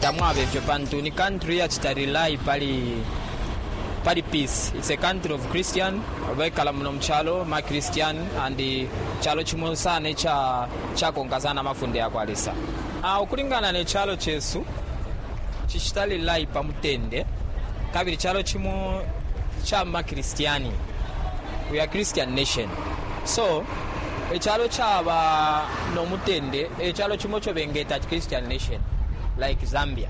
tamwaba ifyo pantu ni country yacita rely pali pali peace it's a country of christian bekala muno mucalo ma christian and calo cimo sana ica cakonka sana amafunde ya kwa lesa uh, ukulingana ne calo cesu cicita rely pa mutende kabili calo cimo ca ma christiani we are christian nation So, icalo caba no mutende e calo cimo ico bengeta ati Christian nation, like Zambia.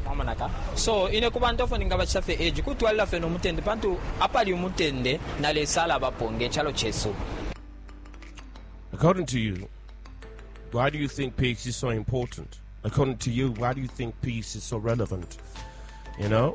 Mwamona ka? So, ine ku bantu ofo ningabacita fye edge, kutwalila fye no mutende, pantu apali umutende na Lesa alabapo nge calo cesu. According to you, why do you think peace is so important? According to you, why do you think peace is so relevant? You know?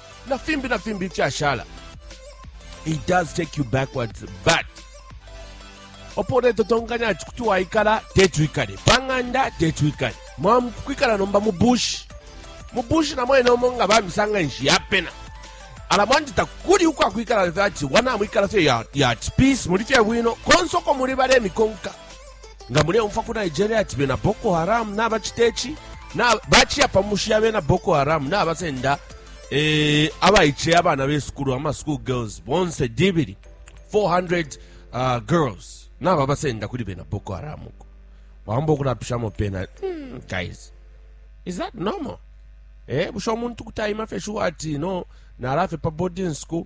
na fimbi na fimbi ifyashala it does take you backwards but opo uletotonganya ati kuti waikala teti wikale pang'anda teti wikale mwakwikala nomba mu bushi mu bushi na mwene omo nga bamisanga nshi yapena ala mwandi takuli ukwakwikala ati wanamwikala fye ya, ya peace muli fye bwino konse uko muli balemikonka nga muleumfwa ku nigeria ati bena boko haram nabacita ici baciya pa mushi ya bena boko haram nabasenda eh, abaice abana besukulu ama school girls bonse dibili 400 uh, girls nababasenda kuli bena boko haram uko wamba okulapishamo pena mm, guys is that normal eh busha omuntu kutayima fe shuwa ati no nalafe pa boarding school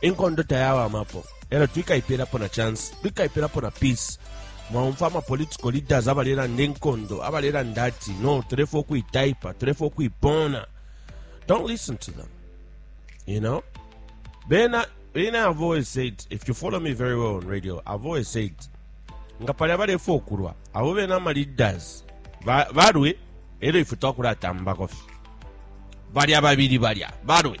inkondo tayawamapo elo twikaipelapo na chance twikaipelapo na peace mwaumfa amapolitical leaders abalelanda inkondo abalelanda ati no tulefo ukuitaipa tulefo ukuipona don't listen to them you know bena bena i've always said if you follow me very well on radio i've always said nga pali abalefo okulwa abo bena amaleaders balwe elo ife twakulatambako fye balya babili balya balwe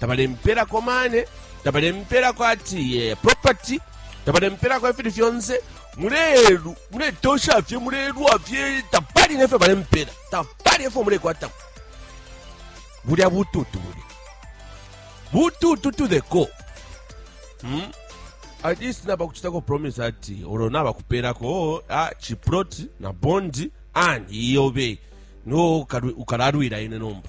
tabalempelako mane tabalempelako ati eh, property tabalempelako ifili fyonse mulelu muletosha fye mulelwa fye tapali nefyo balempela tapali efyo mulekwatako bulya bututu bulya bututu to the core hmm? at least nabakuchitako promise ati olo nabakupelako ah, chiprot na bondi and iyobe no ukalalwila ine nomba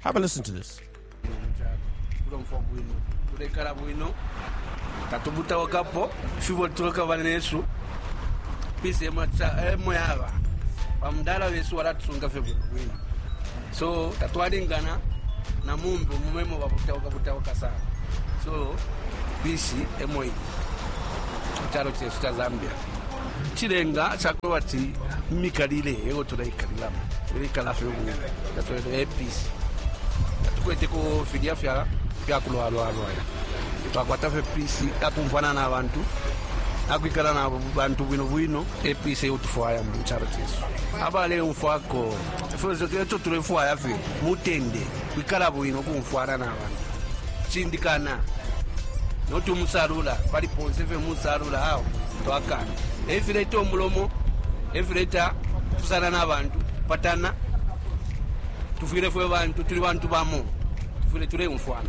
Have a listen to this. tulomfwa bwino tulekala bwino tatubutawakapo fibo tulekaba nesu pisi emo ca- emo yaba bamudala wesu walatusunga fye bwino bwino so tatwalingana na mumbi mumemo babutawaka butawaka sana so pisi emo iyi mu calo cesu ca zambia Icilenga ca kubati imikalile eyo tuleikalilamo tuleikala fe ubumi tatwele episi tatukweteko filya fya fyakulwalwalwala twakwata fe pisi akumfwana na bantu akwikala na bantu bwino bwino episi eyo tufwaya mu calo cesu abaleumfwako eco tulefwaya fe mutende kwikala bwino, ukumfwana na bantu, kucindikana, not umusalula pali ponse fye musalula awo twakana efileta umulomo efileta kupusana na bantu patana tufwile fwe bantu tuli bantu bamo tufwile tuleumfwana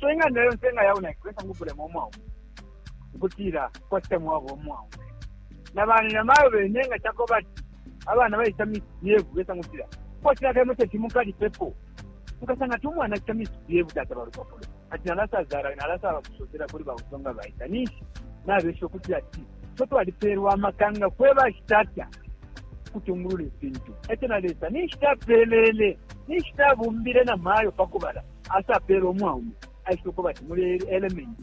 so ing'anda yonse nga yaunaki kwesa ngubulema omwaume ukutila kwasita mwaba omwaume na bana na mayo bene nga chako bati abana baisa misbehave kwesa ngutila kwasita kemo teti mukali pepo mukasanga ti umwana achita misbehave tata balupapulo ati nalasazara nalasa bakusosera kuli bausonga baita ninshi nabesha ukutila ti so twalipeerwa amaka nga fwe bashitata kutungulula ifintu ekyo na lesa ninshi tapeelele ninshi tabumbile na maayo pakubala Asa apele umwaume aishile kuba ati mule element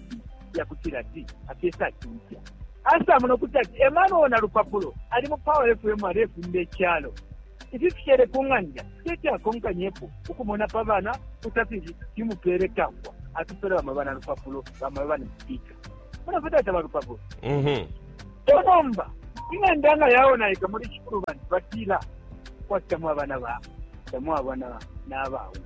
ya kutila ati akesa atumfya asa muno kuti ati emwana uwo na lupapulo ali mu power fm alefunda echalo ifi fishele ku ng'anda teti akonkanyepo ukumona pa bana kutafili timupele kafwa atupele bama bana lupapulo bama bana sipika mona futi ati abalupapulo mhm. tonomba ing'anda nga yaonaika muli cikulu bantu batila kwati tamwabana ba tamwabana n'abaume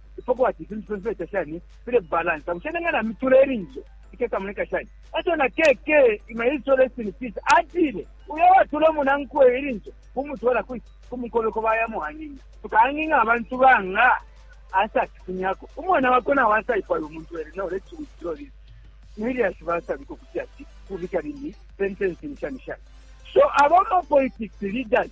ifo kwati ifintu fyonse fyaita shani file balansa bushe nenga na mitula ilinso ikesamoneka shani eco na keke imailiso rest in peace atile uyo watula umunankwe ilinso kumutwala kwi kumukobeko bayamuhang'ing'a tukahang'ing'a abantu banga asatifunyako umwana wako nawe asaipala umuntu ere no let's withdraw this miliasi basabika okuti ati kubika lini sentencing shani shani so abama politics leaders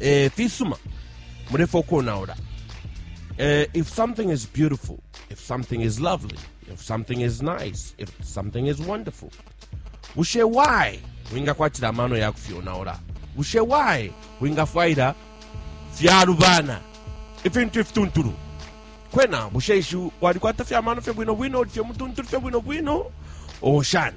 eh, fisuma mulefo konaula eh, if something is beautiful if something is lovely if something is nice if something is wonderful bushe why wingakwatira amano ya kufyonaula bushe why wingafwaira fyalubana ifintu ifituntulu kwena bushe ishi walikwata fyamano fye bwino bwino uli fye mutuntulu fye bwino bwino oshani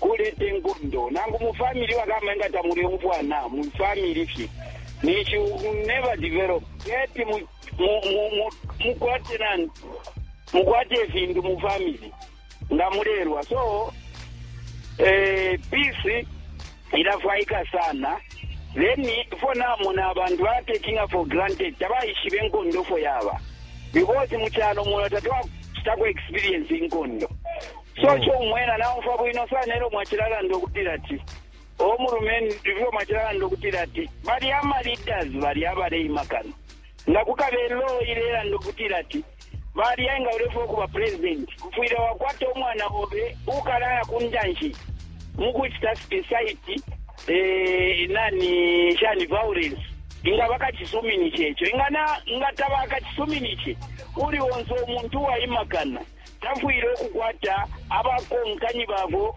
kuleta inkondo nangu mu family bakama inga tamuleumfwana mu family fye ninshi u never develop teti mu mu mu mu mukwate nani mukwate ifintu mu family nga mulelwa so eh peace ilafwaika sana then fo namona abantu batakinga for granted tabaishiba enkondo fo yaba because mu kyalo muno tatwakitako experience inkondo Sure sure umwela naumfwa bwino sana elo mwachilalanda ukutila ati o mulumendo ifyo mwachilalanda ukutila ati bali ama leaders bali abaleima kano nga kukabe law ilelanda ukutila ati bali enga ulefwe kuba president ufwile wakwata umwana obe ukalaya kundanshi mukuchita site eh nani shani violence inga bakachisumini checho ingana nga tabakachisumini che uli onzo umuntu waimakana tafwile ukukwata abakonkani babo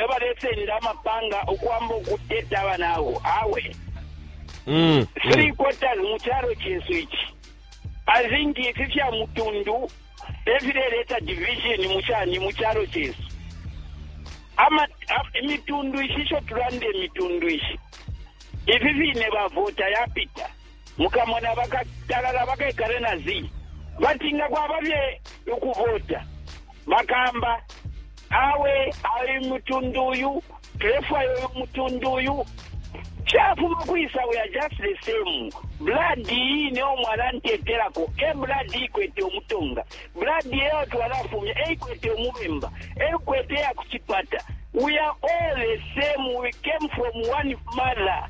abalesenda amapanga ukwamba ukuteta abanabo awe. Three quarters mu calo cesu ici, I think ifi fya mutundu efileleta division mu cani mu calo cesu. Imitundu ishi isho tulanda imitundu ishi, ifi fine bavota yapita. Mukamona bakatalala bakekale na zii. Bati nga kwaba fye ukuvota bakamba awe ai mutundu uyu tulefwaya uyu mutundu uyu chafuma kwisa we are just the same blood iyi niyo mwalantetelako e blood ikwete umutonga blood eyo twalafumya eikwete umubemba eikwete ya kuchipata we are all the same we came from one mother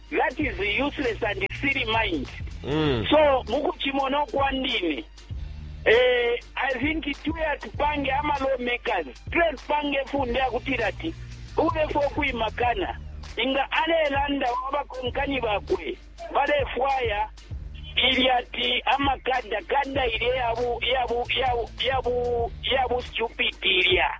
That is useless and silly mind. Mm. So mukuchimona kwandini eh, I think tuya tupange ama lawmakers tuya tupange funde yakutira ati ulefe okwimakana inga alelanda wabakonkanyi bakwe balefwaya ili ati amakada kada ilya yabu yabu yabu yabu yabu stupid ilya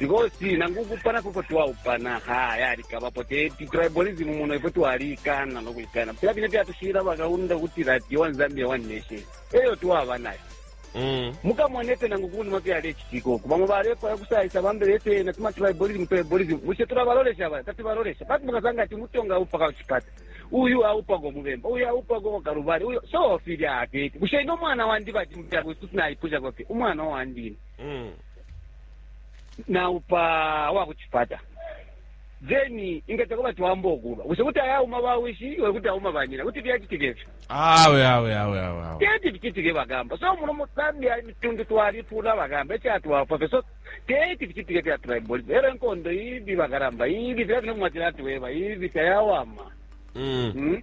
Because nangu ukupana koko twaupana ha yalikabapo te ti- tribalism muno ifwe twalikana nokuikana fila fine fyatushira bakaunda kuti that one Zambia one nation eyo twaba nayo Mm. mukamona efyo nangu kunuma fyalecitika oku bamo balefwaya kusayisa bambele efyena tuma tribalism tribalism bushe tulabalolesha ba tatibalolesha pati mukasanga ati mutonga aupa kaucipata uyu aupa komubemba uyu aupa koko kalubali uyu so filya ateti bushe ino mwana wandi bati mutyakususinaipushako fye umwana wandini Mm. naupa wa ku cipata then ingeta kuba twamba okuba bushe kuti ayauma bawishi iwe kuti auma banyina kuti fyacitika ifyo awe awe awe awe awe teti ficitike bagamba so muno musambia imitundu twalipula bagamba ekyatwafwa fye so teti ficitike fya tribalism era enkondo ibi bagaramba ibi fira fino mwatira atuweba ibi tayawama Mm. Mm.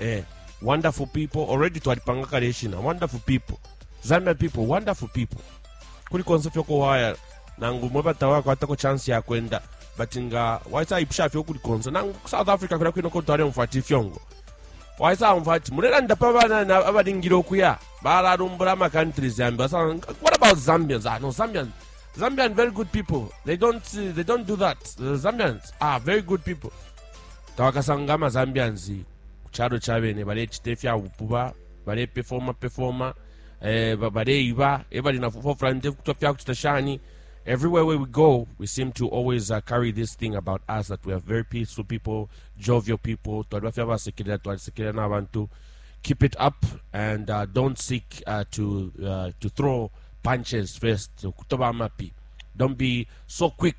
eh, wonderful people already twalipanga kale ishina wonderful people zambia people wonderful people kuli konse fyokuwaya nangu mwe batawakwatako chance yakwenda but nga waisayipusha fye ukuli konse nangu ku south africa kulya kwine kotu alyomfa ati ifyongo waisawumva ati mulelanda pa bana na- abalingile okuya balalumbula ama countries yambi Basa- what about zambians ah, no zambians zambian very good people they don't, they don't do that the zambians are very good people Tawakasange ama Zambians ku calo ca bene balecita ifya bupuba balepefoma pefoma eh, ba- baleiba ebali na forefront kutwa fya kucita shani everywhere where we go we seem to always uh, carry this thing about us that we are very peaceful people jovial people twaliba fya basekelela twalisekelela n'abantu keep it up and uh, don't seek uh, to uh, to throw punches first kutoba amapi don't be so quick